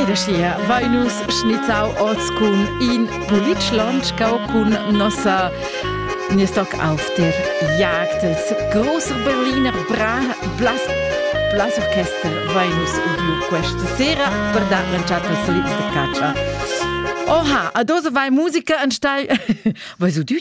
Ed aschia vein nus schnizzau oz cun in bulic lonschgau cun nossa nies toc auf der Jagd els grosser Berliner Bra Blas Blas Orchester vein nus udiu questa sera per dar l'entschatta als solids de catscha. Oha, a dose vai musica an stei. Vai so du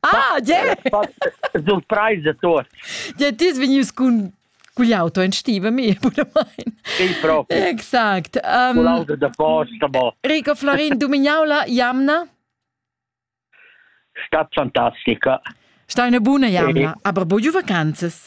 Ah, yeah! Surpresa tuots. Ja, t'es vegnius cun cugliauto in stiva mi, puramain. Sì, proprio. Exakt. Um, Con l'auto da posta, boh. Rico Florin, dumignau jamna? Sta fantastica. Sta una buona jamna, sì. aber buio vacanzas?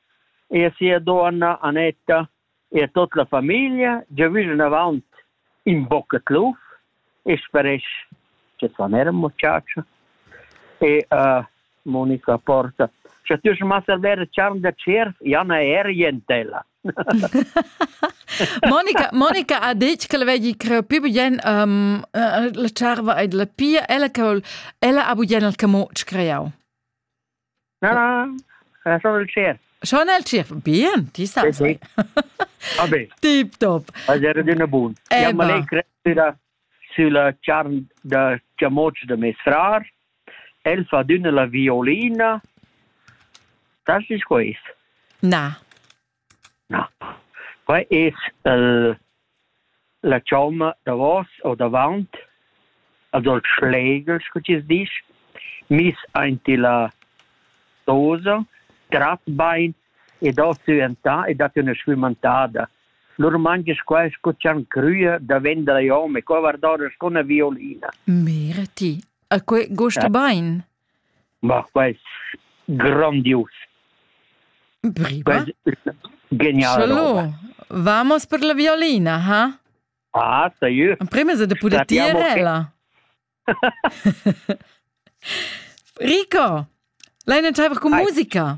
e a sia donna Annetta e a tot la famiglia giavüsch anavant in bocca tluf e speresch che svan era muchacha e uh, Monica Porta Scha tü schon mal server charn da tschierf, Janna Erientella. Monica, Monica ha detto che la vegli creare più bien um, la charva ed la pia, ella che ella ha bien il camot creau. Na, na, schon il tschierf. Schon il tschierf, bien, ti sa. Sì, Vabbè. Tip top. Era d'una buona. Abbiamo lei crescita sulla charn da chamoc da mes frar. El fa d'una la violina. Das ist gut. Na. Na. Quai es el la chomma davos o davant, also il Schlegel, scu chi's disch, miss aint illa dosa, trat bain ed ho süentà e dat üna schwimantada. Lur mangias qua scu chan crüa da vendere i hom e qua guardava scu 'na violina. Mira ti, a que gusta bain. Ma quai es grondius. Prima? Quai es genial roba. Vamos per la violina, ha? Ah, sa io. Prima se da puder tirela. Rico, l'hai in taiver con musica?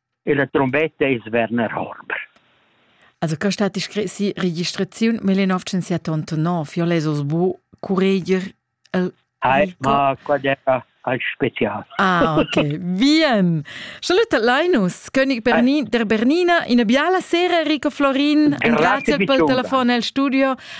e la trombetta es Werner Horber. Also che stat iscressi registraziun 1989 io les os bu cureger el Hai, ma qua era al special. Ah, ok. Bien. Salute Linus, König Berni der Bernina, una biala sera, Rico Florin, grazie per il telefono al studio.